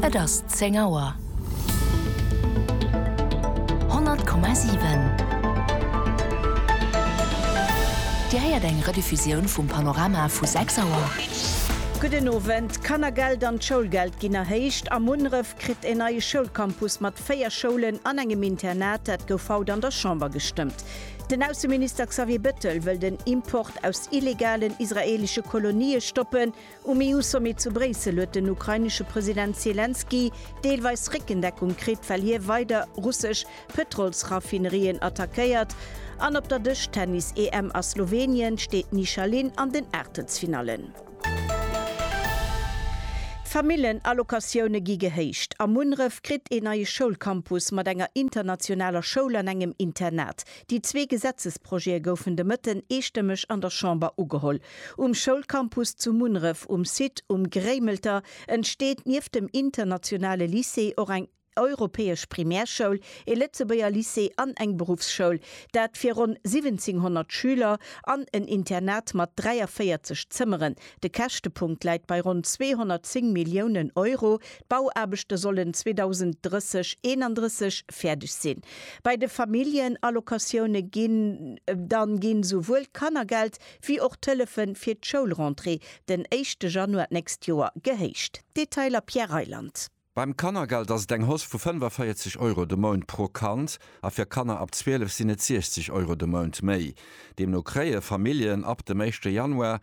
Et ass zéng Auer. 100,7 Dir héiert eng Rediffusioun vum Panorama vu 6 Auer. Gudden Owend. D'Kannergeld an d'Schoulgeld ginn erhéicht a Munneref kritt een neie Schoulcampus mat véier Schoulen an engem Internat. Dat gouf haut an der Chamber gestëmmt. Den Ausseminister Xavier Bettel wëll den Import aus illegalen israeelesche Kolonië stoppen. Um EU-Sommet zu Bréissel huet den ukrainesche President Selenskyj deelweis Réckendeckung kritt, well hie weider russesch Pëtrolsraffinerien attackéiert. An op der Dëschtennis-EM a Slowenien steet d'Nisha Lin an den Aachtelsfinallen. D'Famillenallocatioune gi gehéicht. A Munneref kritt een neie Schoulcampus mat enger internationaler Schoul an engem Internat. Déi zwee Gesetzesprojete goufen de Mëtten eestëmmeg an der Chamber ugeholl. Um Schoulcampus zu Munneref, um Site Um Gréimelter, entsteet nieft dem internationale Lycée och eng europäesch Primärschoul, ee Lëtzebuerger Lycée an eng Beruffsschoul, dat fir ronn 1700 Schüler, an en Internat mat 43 Zëmmeren. De Käschtepunkt läit bei ronn 210 Milliounen Euro, D'Bauaarbechte sollen 2030 31 fäerdeg sinn. Bei de Familljenallocatioune ginn dann ginn esouwuel d'Kannergeld wéi och d'Hëllefe fir d'Schoulrentrée den éischte Januar d'nächst Joer gehéicht. Detailer Pierre Reyland. Beim Kannergeld ass et eng Hausse vu 45 Euro de Mount pro Kand a fir Kanner ab 12 sinn et 60 Euro de Mount méi. Deemno kréie Familljen ab dem éischte Januar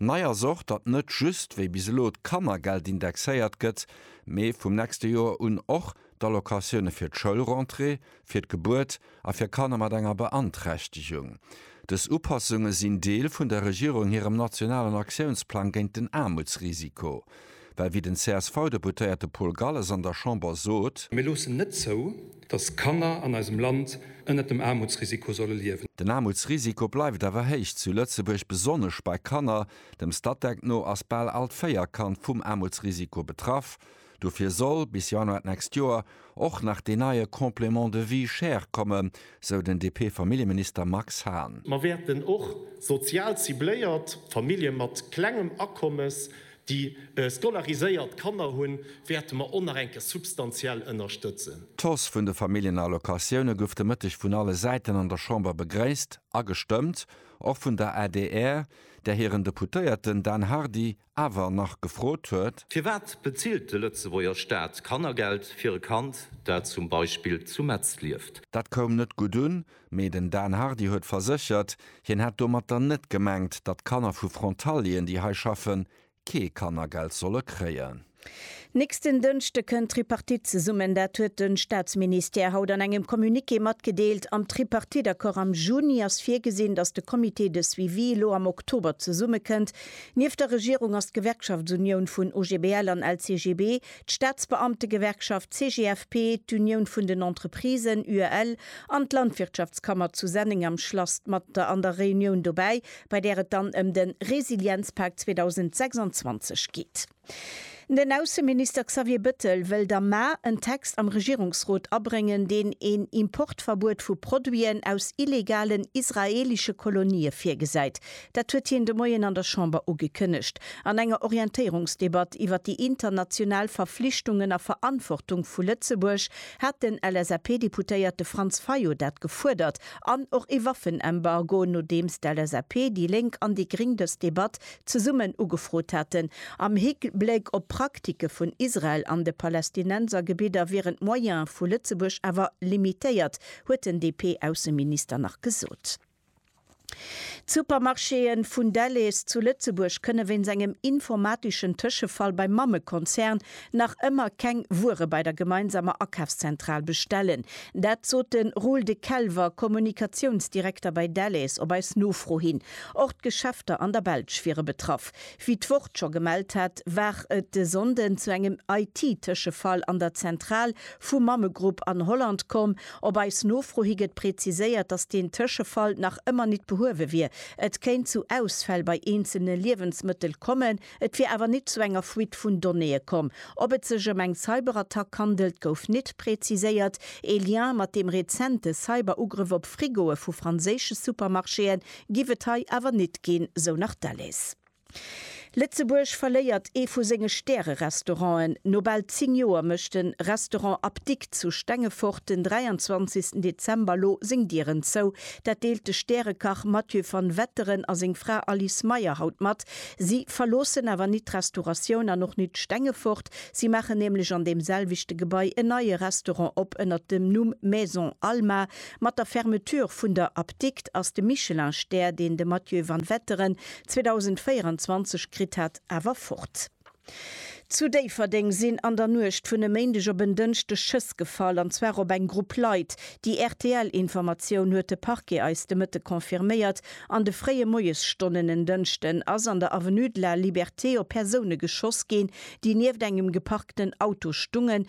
Nei ass och, datt net just wéi bis elo d'Kannergeld indexéiert gëtt, mee vum nächste Joer un och d'Allocatioune fir d'Schoulrentrée, fir d'Gebuert a fir Kanner mat enger Beanträchtegung. Dës Upassunge sinn Deel vun der Regierung hirem nationalen Aktiounsplang géint den Aarmutsrisiko. Well wéi den CSV-Deputéierte Paul Galles an der Chamber sot. Mir loossen net zou, datt Kanner an eisem Land ënnert dem Aarmutsrisiko solle liewen. Den Aarmutsrisiko bleift awer héich zu Lëtzebuerg, besonnesch bei Kanner. Dem Statec no ass bal all d'véier Kand vum Aarmutsrisiko betraff. Dofir soll bis Januar d'nächst Joer och nach deen neie Complément de vie chère kommen, sou den DP-Familljeminister Max Hahn. Mer wäerten och sozial cibléiert Famillje mat klengem Akommes Déi scolariséiert Kanner hunn, wäerte mer och nach eng Kéier substantiell ënnerstëtzen. D'Hausse vun de Familljenallocatioune gouf de Mëtteg vun alle Säiten an der Chamber begréisst a gestëmmt, och vun der adr, där hiren Deputéierten Dan Hardy awer nach gefrot huet, Firwat bezilt de Lëtzebuerger Staat Kannergeld fir e Kand, dat zum Beispill zu Metz lieft? Dat koum net gutt un, Mee den Dan Hardy huet verséchert, hien hätt domatter net gemengt, datt Kanner vu Frontalieren, déi hei schaffen, kee Kannergeld solle kréien. Nächsten Dënschde kënnt d'Tripartite zesummen. Dat huet de Staatsministère haut an engem Communiqué matgedeelt. Am Tripartite-Accord am Juni ass virgesinn, datt de Comité de suivi elo am Oktober zesummekënnt. Nieft der Regierung ass d'Gewerkschaftsunioun vun OGBL an LCGB D'Staatsbeamtegewerkschaft CGFP, d'Unioun vun den Entreprisen, UEL, an d'Landwirtschaftskammer zu Senneng am Schlass d'Matter an der Reunioun dobäi, bei där et dann ëm de Resilienzpak 2026 geet. Den Ausseminister Xavier Bettel wëllt am Mä en Text am Regierungsrot abréngen, deen een Importverbuet vu Produiten aus illegalen israeelesche Kolonië virgesäit. Dat huet hien de Moien an der Chamber ugekënnegt. An enger Orientéierungsdebatt iwwer déi international Verflichtungen a Verantwortung vu Lëtzebuerg hat den LSAP-Deputéierte Franz Fayot dat gefuerdert an och ee Waffenembargo, nodeems d'LSAP, déi Lénk an déi Gring dës Debatt zesummen ugefrot haten. Am Hikbléck op d'Praktike vun Israel an de Palästinensergebidder wieren d'Moyene vu Lëtzebuerg awer limitéiert, huet den DP-Ausseminister nach gesot. D'Supermarchéë vun Delhaize zu Lëtzebuerg kënne wéinst engem informateschen Tëschefall beim Mammekonzern nach ëmmer keng Wuere bei der gemeinsamer Akafszentral bestellen. Dat sot de Roel De Kelver, Kommunikatiounsdirekter bei Delhaize, op eis Nofro hin. Och d'Geschäfter an der Belsch wiere betraff. Wéi d'Wort scho gemellt hat, war et de Sonnden zu engem IT-Tëschefall an der Zentral vum Mammegrupp an Holland komm. Op eis Nofro hi gëtt präziséiert, dass deen Tëschefall nach ëmmer nit behuewe wier. Et kéint zu Ausfäll bei eenzelne Liewensmëttel kommen, et wier awer nit zu enger Fuite vun Donnéeë komm. Ob et sech ëm eng Cyberattack handelt, gouf nit präziséiert. Ee Lien mat deem rezente Cyberugrëff op Frigoe vu franséische Supermarchéen giff et hei awer nit ginn, sou nach d'Alice. Lëtzebuerg verléiert ee vu senge Stärerestauranten. No bal 10 Joer mécht de Restaurant Apdikt zu Stengefort den 23 Dezember elo seng Dieren zou. Dat deelt de Stärekach Mathieu van Wetteren a seng Fra Alice Meyer haut mat. Si verloossen awer nit d'Restauratioun an och nit Stengefort. Si maachen nämlech an deem selwechte Gebai en neie Restaurant op ënnert dem Numm Maison Alma. Mat der Fermeture vun der Apdikt ass de Michelin-Stär, deen de Mathieu van Wetteren 2024 kritt hat awer fort. Zu Déifferdeng sinn an der Nuecht vun e Méindeg op en Dënschdeg Schëss gefall, an zwar op eng Grupp Leit. Déi RTL-Informatioun huet de Parquet eis de Mëtte confirméiert. An de fréie Moiesstonnen en Dënschden ass an der Avenue de la Liberté op Persoune geschoss ginn, déi nieft engem geparkten Auto stungen,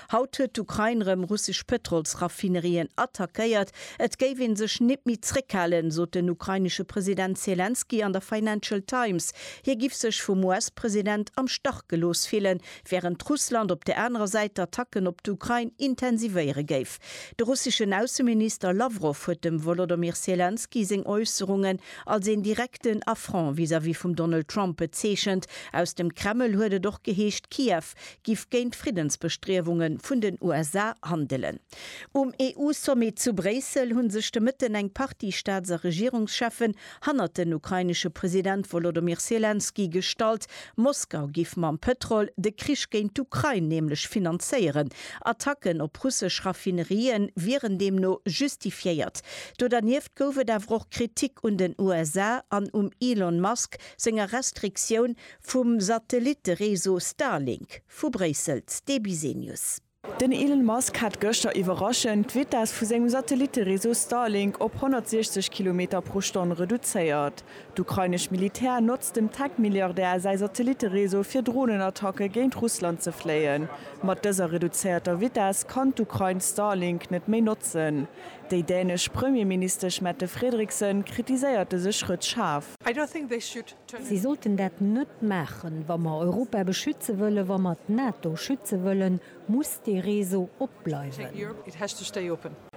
Haut huet d'Ukrain rëm russesch Pëtrolsraffinerien attackéiert. Et géif ee sech nit méi zréckhalen, sot den ukrainesche President Selenskyj an der Financial Times. Hie giff sech vum US-President am Stach gelooss fillen, wärend Russland op der anerer Säit d'Attacken op d'Ukrain intensivéiere géif. De russeschen Ausseminister Lawrow huet dem Wolodomyr Selenskyj seng Äusserungen als een direkten Affront vis-à-vis vum Donald Trump bezeechent. Aus dem Kreml huet et och geheescht, Kiew Trump giff géint d'Friddensbestriewungen vun den USA handelen. Um EU-Sommet zu Bréissel hunn sech de Mëtten eng Partie Staats a Regierungscheffen hannert den ukrainesche President Wolodymyr Selenskyj gestallt. Moskau giff mam Pëtrol de Krich géint d'Ukrain nämlech finanzéieren. Attacken op russesch Raffinerien wieren deemno justifiéiert. Do dernieft gouf et awer och Kritik un den USA an um Elon Musk senger Restriktioun Vum Satellitte-Réseau Starlink vu Bréissel, d'Debizenius. Den Elon Musk hat gëschter iwwerraschend d'Vitess vu sengem Satellitte-Réseau Starlink op 160 Kilometer pro Stonn reduzéiert. D'ukrainesch Militär notzt dem Tech-Milliardär säi Satellitte-Réseau fir Dronenattacke géint Russland ze fléien. Mat dëser reduzéierter Vitess kann d'Ukrain Starlink net méi notzen. Déi dänesch Premierministesch Mette Frederiksen kritiséiert dëse Schrëtt schaarf. Si sollten dat net maachen. Wa mer Europa beschütze wëllen, wa mer d'NATO schütze wëllen, muss dee Réseau op bleiwen.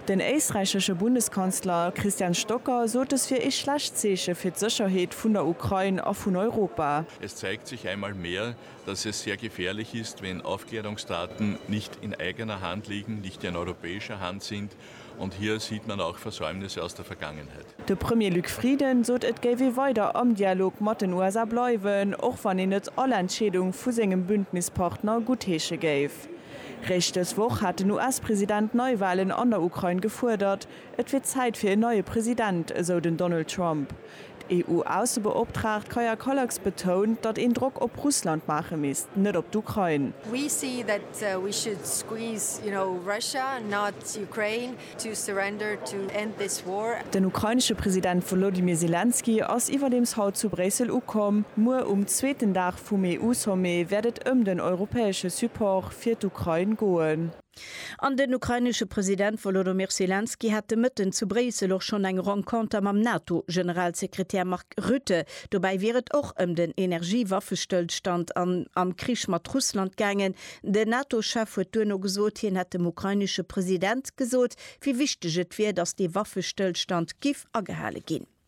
Den éisträichesche Bundeskanzler Christian Stocker sot et wier ee schlecht Zeeche fir d'Sécherheet vun der Ukrain a vun Europa. Es zeigt sich einmal mehr, dass es sehr gefährlich ist, wenn Aufklärungsdaten nicht in eigener Hand liegen, nicht in europäischer Hand sind, Und hier sieht man auch Versäumnisse aus der Vergangenheit. De Premier Luc Frieden sot et géif ee weider am Dialog mat den USA bleiwen, och wann een net all Entscheedung vu sengem Bündnispartner guttheesche géif. Réischt dës Woch hat den US-President Neiwalen an der Ukrain gefuerdert. Et wier Zäit fir en neie President, esou den Donald Trump. D'EU-Aussebeoptraagt Kaja Kallas betount, datt een Drock op Russland maache misst, net op d'Ukrain. Den ukrainesche President Wolodymyr Selenskyj ass iwwerdeems haut zu Bréissel ukomm. Muer um zweeten Dag vum EU-Sommet wäert et ëm den europäesche Support fir d'Ukrain goen. An den ukrainesche President Wolodymyr Selenskyj hat de Mëtten zu Bréissel och schonn eng Renconter mam NATO-Generalsekretär Mark Rutte. Dobäi wier et och ëm den Energie-Waffestëllstand an am Krich mat Russland gaangen. Den NATO-Chef huet duerno gesot, hien hätt dem ukrainesche President gesot, wéi wichteg et wier, datt dee Waffestëllstand giff agehale ginn.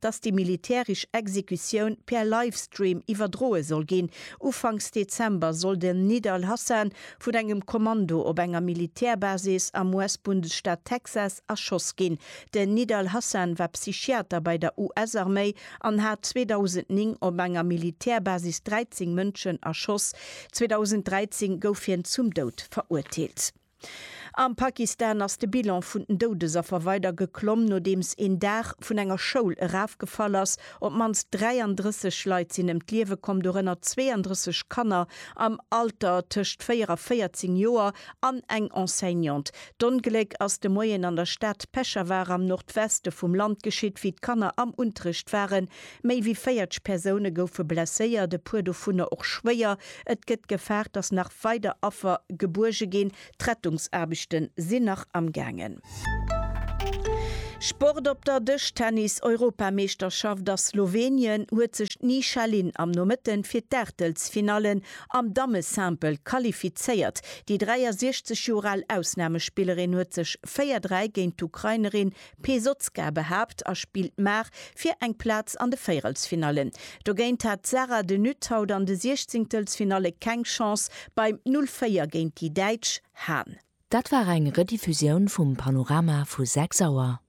dass déi militärisch Exekutioun per Livestream iwwerdroe soll ginn. Ufanks Dezember soll den Nid al-Hassan vun engem Kommando op enger Militärbasis am US-Bundesstaat Texas erschoss ginn. Den Nid al-Hassan war Psychiater bei der US-Arméi an hat 2009 op enger Militärbasis 13 Mënschen erschoss. 2013 gouf hien zum Doud verurteelt. Am Pakistan ass de Bilan vun den Doudesaffer weider geklomm, nodeems een Daach vun enger Schoul erafgefall ass. Op d'mannst 33 Leit sinn ëm d'Liewe komm, dorënner 32 Kanner am Alter tëscht 4 a 14 Joer an eng Enseignante. D'Ongléck ass de Moien an der Stad Peshawar am Nordweste vum Land geschitt, wéi d'Kanner am Unterrecht waren. Méi wéi 40 Persoune goufe blesséiert, e puer dovunner och schwéier. Et gëtt gefaart, datt nach weider Affer gebuerge ginn. D'Rettungsaarbechte sinn nach amgaangen. Sport op der Dëschtennis-Europameeschterschaft a Slowenien huet sech d'Nisha Lin am Nomëtte fir d'Aachtelsfinalle am Damme-Simple qualifizéiert. Déi 63 Joer al Ausnamespillerin huet sech 4-3 géint d'Ukrainerin Pesotzka behaapt a spillt maach fir eng Plaz an de Véierelsfinallen. Dogéint hat d'Sarah de Nutte haut an de Siechzingtelsfinalle keng Chance beim 0, 4 géint déi Däitsch Hahn. Dat war eng Rediffusioun vum Panorama vu 6 Auer.